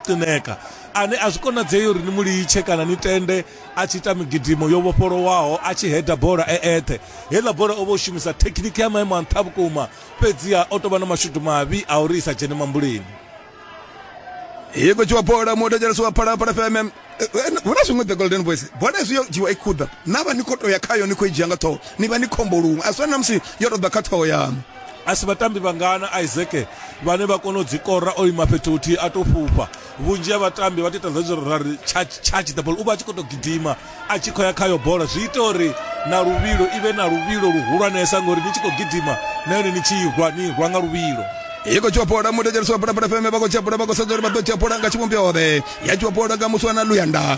Tineka, ane a zwi konadzei uri ni mu litshe kana ni tende a tshi ita migidimo yo vhofholowaho a tshi heda bola e eṱhe. Heiḽa bola o vha o shumisa thekhiniki ya maimo a nṱha vhukuma, fhedziha o tou vha na mashudu mavhi a uri i sa dzhene mambuleni. i khou dzhiwa bola muodejelesi wa phalaphala fm eh, eh, hu na zwiṅwe the golden boys bola izwi yo dzhiwa i khuḓa na vha ni khou tou ya khayo ni khou i dzhia nga ṱhoho ni vha ni khombo luṅwe a zwi fani na musi yo tou ḓa kha ṱhoho yaṋu a si vhatambi vhangana isaac vhane vha kona u dzi kora o ima fhethu huthihi a tou fhufha vhunzhi ha vhatambi vha tiita zwezwo ra ri charge the ball u vha a tshi khou tou gidima a tshi khou ya khayo bola zwi ita uri na luvhilo i vhe na luvhilo luhulwanesa ngori ni tshi khou gidima na yone ni tshi irwa ni irwa nga luvhilo iko chiwapola mutekerisi wa pulapula feme vha khou tshiapola vha khou sedza uri vha ḓo tshiapola nga tshivhumbeo ḓe ya chiwapola nga muswana luyanda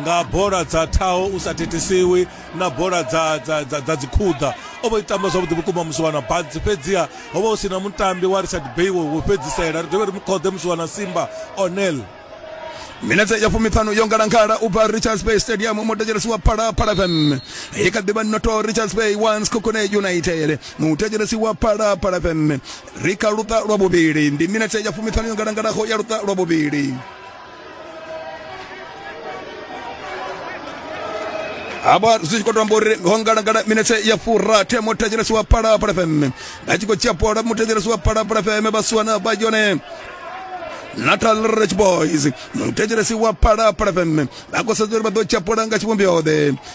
nga bola dza thaho u sa thithisiwi na bola dza dza dza, dza dzikhuḓa o vho itamba zwavhuḓi vhukuma musiwana badzi fhedziha ho vha hu si na mutambi wa richard bay wo wo fhedzisela ri dovhe ri mu khoḓe musiwana simba onel minetse ya fumiṱhanu yo ngalangala u bva richards bay stadium mutetshelesi wa phalaphala fm i kha ḓivha noto richards bay once cocone united mutetshelesi wa phalaphala fm ri kha luṱa lwa vhuvhili ndi minetse ya fumiṱhanu yo ngalangalaho ya luṱa lwa vhuvhili hapa zwi tshi khou tamba uri ho ngalangala minetse ya furathi muthethelesi wa phalaphala fm a tshi khou tshia bola muthethelesi wa phalaphala fm vhasiwana vha yone natal rich boys muthethelesi wa phalaphala fm vha khou sedza uri vha ḓo tshia bola nga tshivhumbioḓe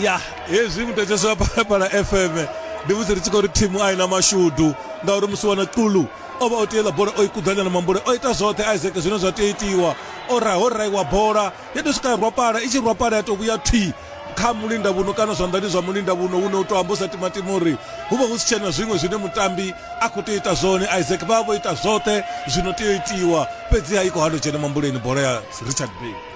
ya hezwi mutetsheso wa phalaphala fm ndi musi ri tshi khou ri thimu a i na mashudu ngauri musi wana qulu o vha o tiela bola o i kudzanya na mambule o ita zwoṱhe isaac zwine zwa tea itiwa o ra ho raiwa bola ya tou swika ya rwapala i tshi rwapala ya tou vhuya thwi kha mulinda vhuno kana zwanḓani zwa mulinda vhuno une u tou amba u sa timatima uri hu vha hu si tshena zwiṅwe zwine mutambi a khou tea ita zwone isaac vha vha vho ita zwoṱhe zwino tea itiwa fhedzi ha i khou hano dzhena mambuleni bola ya richard bay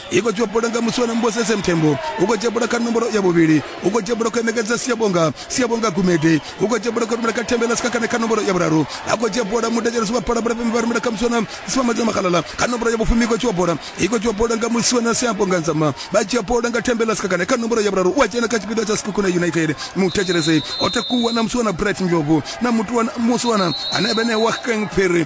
I khou dzhiwa bola nga muswa na Mbosese Mthembu. U khou dzhia bola kha nomboro ya vhuvhili. U khou dzhia bola khou ṋekedza Siyabonga. Siyabonga Gumede. U khou dzhia bola khou rumela kha Thembela Sikhakhane kha nomboro ya vhuraru. A khou dzhia bola mudedzeledzi wa bola Bulapembe vha rumela kha muswa na Siphamadzwa Makhalala kha nomboro ya vhufumi. I khou dzhiwa bola. I khou dzhiwa bola nga muswa na Siyabonga Nzama. Vha dzhia bola nga Thembela Sikhakhane kha nomboro ya vhuraru. U a dzhena kha tshipiḓa tsha Sekhukhune United. Muthetshelesi o takuwa na muswa na Bright Ndlovu na mutuwa muswa na hanevha ene wa Kang Phiri.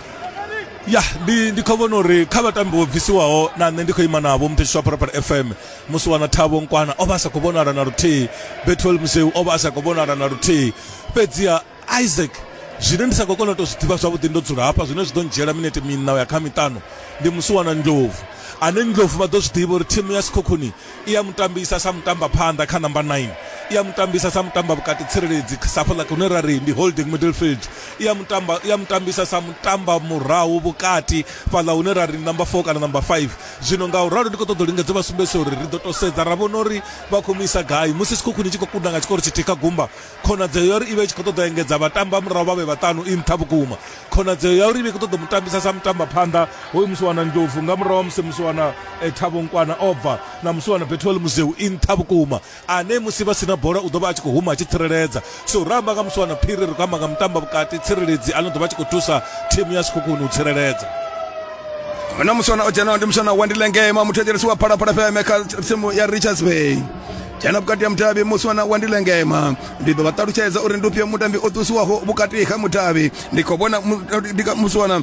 ya ndi ndi khou vhona uri kha vhatambi vho bvisiwaho na nṋe ndi khou ima navho muthetshiso wa parapara fm musi wana thavho nkwana o vha a sa khou vhonala na luthihi betwel museu o vha a sa khou vhonala na luthihi fhedziha isaac zwine ndi sa khou kona u tou zwi ḓivha zwavhuḓi ndo dzula hafha zwine zwi ḓo ndzhiela minete miṋa ya kha miṱanu ndi musi wana ndlovu ane ndlovu vha ḓo zwi ḓivha uri thimu ya sikhokhuni i a mutambisa sa mutambaphanḓa kha number 9 i a mutambisa sa mutamba vhukati tsireledzi safho ḽa hune ra ri ndi holding middle field i a mutamba i a mutambisa sa mutamba murahu vhukati fhaḽa hune ra ri number 4 kana number 5 zwino nga u ralo ndi khou ṱoḓa u lingedza vha sumbedzisa uri ri ḓo to sedza ra vhona uri vha khou mu isa gai musi sikhukhuni tshi khou kunda nga tshikoro tshithihi kha gumba khonadzeo ya uri i vha i tshi khou ṱoḓa engedza vhatambi vha murahu vha vhe vhaṱanu i nṱha vhukuma khonadzeo ya uri i vha i khou ṱoḓa mu tambisa sa mutamba phanḓa hoyu musiwana ndlovu nga murahu wa musi musiwana eh, thabonkwana o bva na musiwana betwel muzeu i nṱha vhukuma ane musi vha sina bola u ḓo vha a tshi khou huma a tshi tsireledza so ra amba nga musiwana phiri ri khou amba nga mutamba vhukati tsireledzi ano ḓo vha tshi khou thusa thimu ya sikhukhuni u tsireledza na musiwana o dzhenaho ndi musiwana wa ndilengema muthu a dzhenisiwa phalaphala fm kha tsimu ya richards bay dzhena vhukati ha mudavhi musi wana wa ndi lengema ndi ḓo vha ṱalutshedza uri ndi ufhio mutambi o ṱusiwaho vhukati ha mudavhi ndi khou vhona musi wana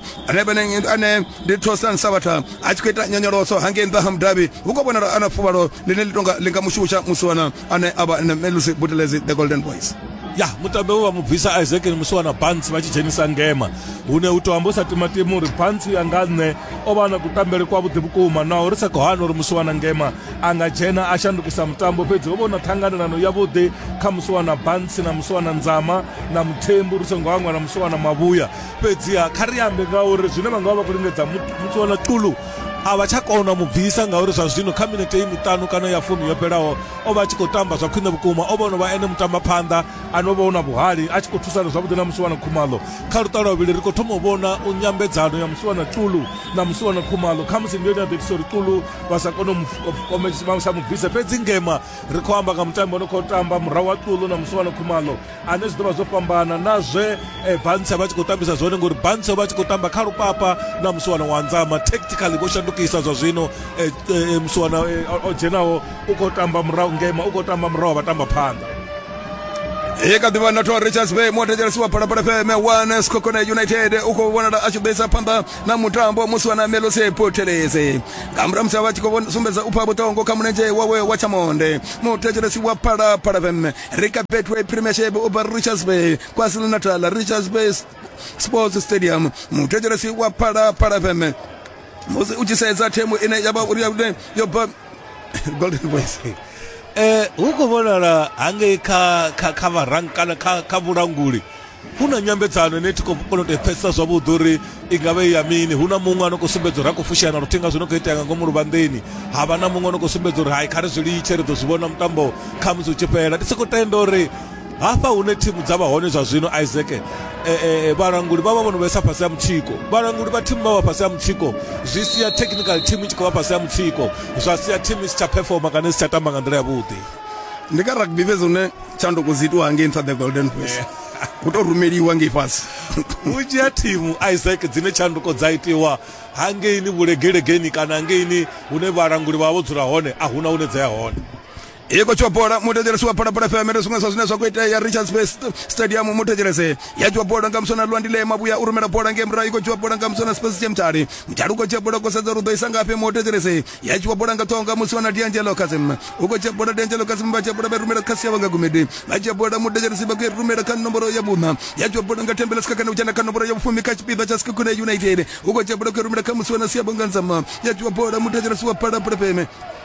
ane ndi tosan sabatha a tshi khou ita nyonyoloso hangei nṱha ha mudavhi hu khou vhonala ana fuvhalo ḽine ḽi tonga ḽi nga mushusha musi wana ane a vha melusi butelezi the golden boys ya mutambi we vha mu bvisa isaac ni musi wana bantsi vha tshi dzhenisa ngema hune u to amba u sa timatima uri bantsi ya nga nṋe o vha na kutambele kwavhuḓi vhukuma naho ri sa khou hana uri musi wana ngema a nga dzhena a shandukisa mutambo fhedzi ho vhona ṱhanganelano yavhuḓi kha musuwana bantsi na musuwana nzama na muthembu ri songo hangwa na musuwana mavhuya fhedziha kha ri ambe ngauri zwine vha nga vha vha khou lingedza musuwana qulu a vha tsha kona mu bvisa ngauri zwa zwino kha minete i miṱanu kana ya fumi yo fhelaho o vha a tshi khou tamba zwa khwine vhukuma o vha ono vha ene mutamba phanḓa ane o vha una vhuhali a tshi khou thusana zwavhuḓi na musiwana khumalo kha luṱa lwa vhili ri khou thoma u vhona u nyambedzano ya musiwana tulu na musiwana khumalo khamusi ndi yone ya ḓo itisa uri tulu vha sa kone u sa mu bvisa fhedzi ngema ri khou amba nga mutambi o no khou tamba murahu wa ṱulo na musuwano khumalo ane zwi ḓo vha zwo fhambana na zwe e, bantsha vha tshi khou tambisa zwone ngori bantsha vha tshi khou tamba kha lupapa na musuwano wa nzama tactically vho shandukisa zwa zwino e, e, musuwana o dzhenaho u khou tamba murahu ngema u khou tamba murahu vha tamba phanḓa e ka ḓivha na thwa richards bay mothetshela siwa phalaphala fm one skokone united u khou vhonala a tshi ḓisa phanḓa na mutambo wa musi wa na melose poteleze nga murahu musi vha tshi khou sumbedza u pha vhuṱongo kha mulenzhe wawe wa tshamonde muthetshelesi wa phala phala fm rika betway premiership uba richards bay kwazulu natal richards bay sports stadium muthetshelesi wa phala phala fm musi u tshi sedza themu ine ya vha uri ya yo golden boys eh hu khou vhonala hangei kha kha kha vharang kana kha kha vhulanguli hu na nyambedzano ine thi khou kona u tepfhesesa zwavhuḓi uri i nga vhe ya mini hu na muṅwe ano khou sumbedza uri a khou fushana luthihi nga zwino khou itea nga ngomu luvhanḓeni ha vha na muṅwe ano khou sumbedza uri hai kha ri zwi litshe ri ḓo zwi vhona mutambo kha musi u tshi fhela ndi sokou tenda uri hafha hune thimu dza vha hone zwa zwino isaac eh, eh, eh, vhalanguli vha vha vho no vhesa fhasi ha mutsiko vhalanguli vha thimu vha vha fhasi ha mutsiko zwi sia technical team i tshi khou vha fhasi ha mutsiko zwa sia thimu i si tsha performa kana i si tsha tamba nga nḓila yavhuḓi ndi kha rugby fhedzi hune tshanduko dzi itiwa ngei nṱha the golden voice ku tou rumeliwa ngei fhasi vhunzhi ha thimu isaac dzine tshanduko dza itiwa hangeini vhulegelegeni kana hangeini hune vhalanguli vha vha vho dzula hone a huna hune dza ya hone i khou tshiwa bola muthetshelesi wa phalaphala fm ri zwiṅwe zwa zwine zwa khou itea richards bay stadium muthetshelese ya tshiwa bola nga musona lwandile mavhuya u rumela bola nge murahu i khou tshiwa bola nga musona space che mtali mtali u khou tshiwa bola u khou sedza uri u ḓo isa ngafhi muthetshelese ya tshiwa bola nga ṱhoho nga musona diangelo kasim u khou tshiwa bola diangelo kasim vha tshiwa bola vha rumela khasi yavho nga gumedi vha tshiwa bola muthetshelesi vha khou i rumela kha nomboro ya vhuṋa ya tshiwa bola nga thembela sika kana u dzhena kha nomboro ya vhufumi kha tshipiḓa tsha sikakune united u khou tshiwa bola khou i rumela kha musona si yavho nga nzama ya tshiwa bola muthetshelesi wa phalaphala fm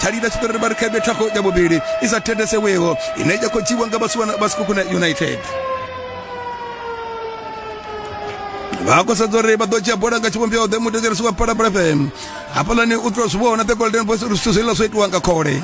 thalila tshi ḓo ri vhari khaebe thakho ya vhuvhili i sa thendeseweho ine ya khou dzhiiwa nga vhasikukuna united vha khou sedza uri vha ḓo dzhia bola nga tshivhumbeo ḓe mutekerisi wa palapala fm hafhalani u tou zwi vhona the golden boys uri zwithu zwiḽa zwo itiwa nga khole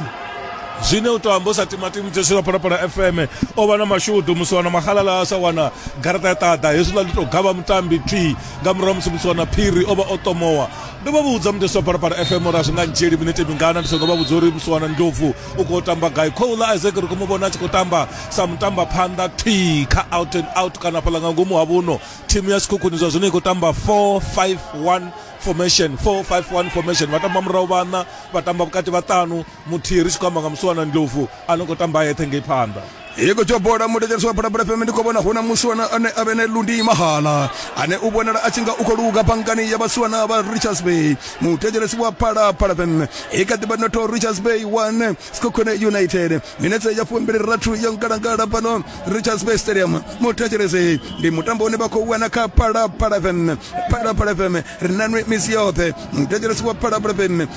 zwine u to amba u sa timatimu tsheswi lwa phalaphala fm o vha na mashudu musi wana mahalala a sa wana garaṱa ya ṱaḓa hezwiḽa ndi to gavha mutambi twi nga murahu musi musi wana phiri o vha o tomowa ndo vha vhudza mudeswa phalaphala fm uri a zwi nga ndzhieli minete mingana ndi songo vha vhudza uri musiwana ndlovu u khou tamba gai khoula isaac ri khou mu vhona a tshi khou tamba sa mutamba phanḓa thwi kha out and out kana fhaḽa nga ngomu ha vhuno thimu ya sikhukhuni zwa zwino i khou tamba 451 formation 451 formation vha tamba murahu vhaṋa vha tamba vhukati vhaṱanu muthihi ri tshi khou amba nga muswana ndlovu a no khou tamba yeṱhe ngei phanḓa hiko tsho bola mudedzereso wa bulabula fm ndi khou vhona hu na muswana ane a vhe ne lundi mahala ane u vhonala a tshi nga u khou luga bangani ya vhaswana vha richards bay mutedzelesi wa phalaphala fm i kha ḓivha noto richards bay one skokhone united minetse ya fumbili rathu ya ngalangala fhano richards bay stadium mutedzelesi ndi mutambo une vha khou wana kha phalaphala fm phalaphala fm ri nanwe misi yoṱhe mutedzelesi wa phalaphala fm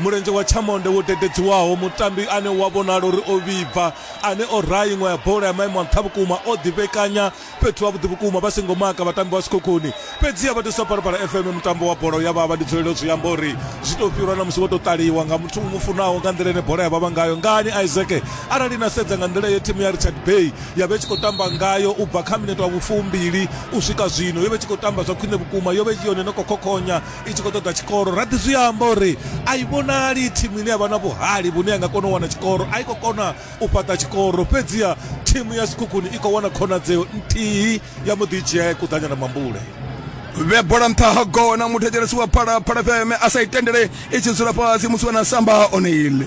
Mulenzhe wa Chamonde wo dededziwaho, mutambi ane u a vhonala uri o vhibva, ane o raha iṅwe ya bola ya maimo a nṱha vhukuma, o ḓivhekanya fhethu havhuḓi vhukuma vha songo maka vhatambi vha Sekhukhuni. Fhedziha vhathuswa Phalaphala FM mutambo wa bola u ya vhavha, ndi dzulelo zwi amba uri zwi tou fhirwa na musi wo tou ṱaliwa nga muthu u mu funaho nga nḓila ine bola ya vhavha ngayo. Ngani, Isaac? Arali na sedza nga nḓila ye thimu ya Richards Bay ya vha i tshi khou tamba ngayo u bva kha minete wa vhufumbili u swika zwino, yo vha i tshi khou tamba zwa khwine vhukuma, yo vha i yone i no khou khokhonya i tshi khou ṱoḓa tshikoro ra ḓi zwi amba uri a i vhonali thimu ine ya vha na vhuhali vhune ya nga kona u wana tshikoro a i khou kona u fhaṱa tshikoro fhedziha thimu ya sikhukhuni i khou wana khonadzeo nthihi ya mbo ḓi dzhia ya kuḓanya na mambule vhe bola nṱha ha gona muthetshelesi wa phalaphala fm a sa i tendele i tshi dzula fhasi musi wana samba oneile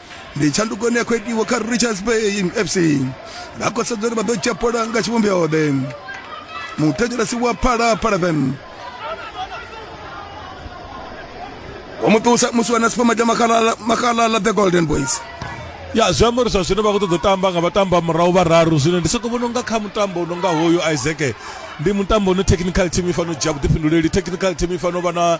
ndi tshanduko ine ya khou itiwa kha richards bay fc vha khou sedza uri vha ḓo dzhia bola nga tshivhumbioḓe muthetshelesi wa phala phalafem wa muṱusa musi wana sipamata makhalala the golden boys ya zwi amba uri zwa zwino vha khou ṱoḓa u tamba nga vhatambo a murahu vhararu zwino ndi soko vhona unga kha mutambo unonga hoyu isaac ndi mutambo une technical team i fanela u dzhia vhuḓifhinduleli technical team i fanela u vha na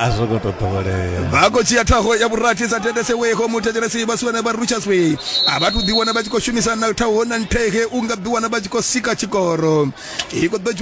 a zwo ngo to ḓowelea vha khou dzhia ṱhaho ya vhurathi sa teteseweho muthetshelesi vha suwana vha ruchaswe a vha thu ḓiwana vha tshi khou shumisana ṱhaho na nthege u nga ḓiwana vha tshi khou sika tshikoro i khou ḓo